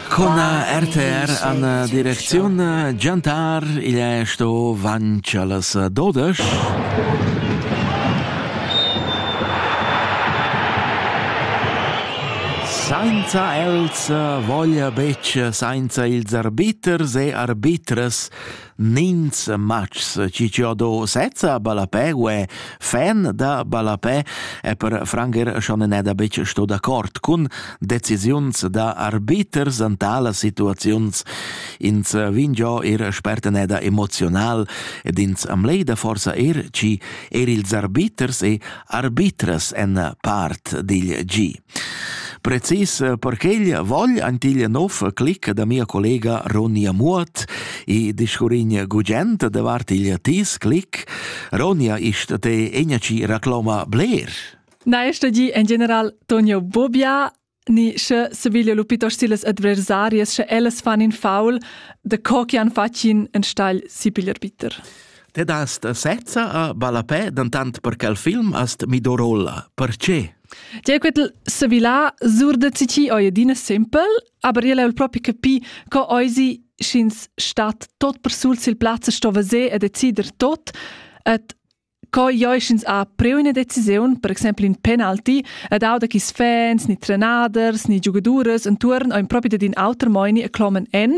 Cona RTR an direcziun Giantar igl è sto vanch allas dodesch. Sainza els voglia betg, sainza ils arbiters e arbitras Ninz matgs chi ho do sezza ballapè u è fan da ballapè e per Franger schon n'è da betg sto d'accord cun decisiuns da arbiters an talas situaziuns. Ins vin giò ir sperteneda emoziunal ed ins am leida forsa er chi er ils arbiters e arbitras en part digl gi. Precis per quegl vogl antiglia nov clic da mia collega Ronja Muoth e discurrin gugent davart igl tis clic. Ronja, ist te engaci recloma bler? Na, este di en general Tonio Bobia, ni sche Sevilla lupitos siles adversarias, sche ellas fan in faul, de co che han facin en stagl si piglier bitter. Te dast sezza a balapè, dentant per quel film hast mi dorolla. Perché? Tie quetel sevilà sur da citi oi adina simpel, aber io l'ho propi capi co oisi sch'ins stat tot persul sil plaz e sto vaser e decider tot, et co ioi sch'ins ha preu ina decisiun, per exempel in penalti, ed auda chi fans, ni trenaders, ni giugaduras entuorn ein propi dad in auter moini e clomen en,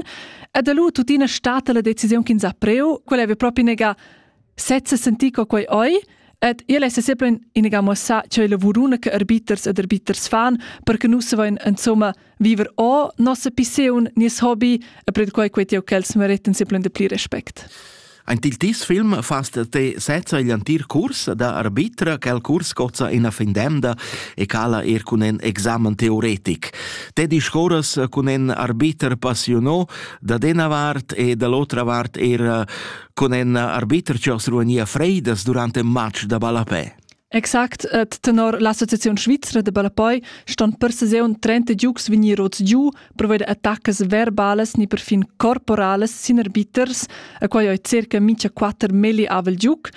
ed lu tuttina stat la decisiun ch'ins ha preu, quella veva propi nega Sezza sentì co quei oi, ed il è sempre iniga mossa che le vuruna che arbiters ed arbiters fan per che nus voin insomma viver o nossa piseun nies hobby e per quei quei tieu ch'els meretten sempre de pli respect. Ein il tis film fast te sezza igl antir curs da arbitra, quel curs cozza ina fin demda e cala er cun en examen teoretic. Te discoras cun en arbiter passiono da dena vart e dall'otra vart er con en arbiter che os ruania freidas durante un match da ballapè. Exact, et tenor l'Associazione Svizzera de Ballapoi ston per saison 30 giugs vegnir rots giu per attacas verbales ni perfin corporales sin arbiters, a quai oi circa mincha quatter melli avel giuc,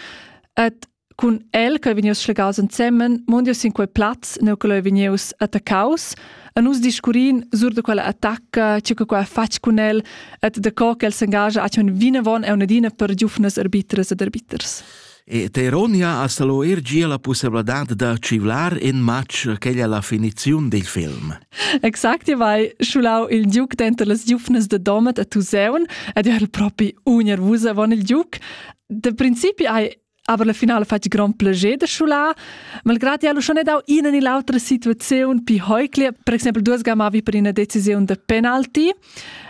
et Cun el che vegnius schlegaus ensemen, mondius sin quei plaz, neu che leu vegnius attaccaus, e nus discurrin sur da quella attacca, tge che quella ha fatg cun el, et da co che el s'engagia a tschun vinavon e un'adina per giufnas arbitras ed arbiters. E Teronia ha salo er gia la possibilità da civlar in match che è la finizione del film. Exakt, io vai schulau il Duke dentro las giufnas de Domet a Tuseun ed io ero proprio unervusa von il Duke. De principi hai Aber la finala ha fatg grond plascher da schular. Malgrad el schon dau ina ni l'autra situaziun pi heukle, per exempel duas gamavi per una decisione de penalti,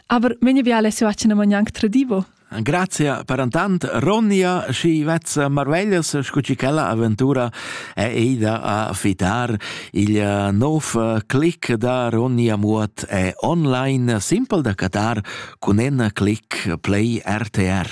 aber vegni via Alessio Acina Magnanc tradivo. Grazia per intant Ronnia și vezza Marvellas scu ci quella avventura è ida a fitar il eh, nov eh, click da Ronnia Muot è online simple da catar cun en click play RTR.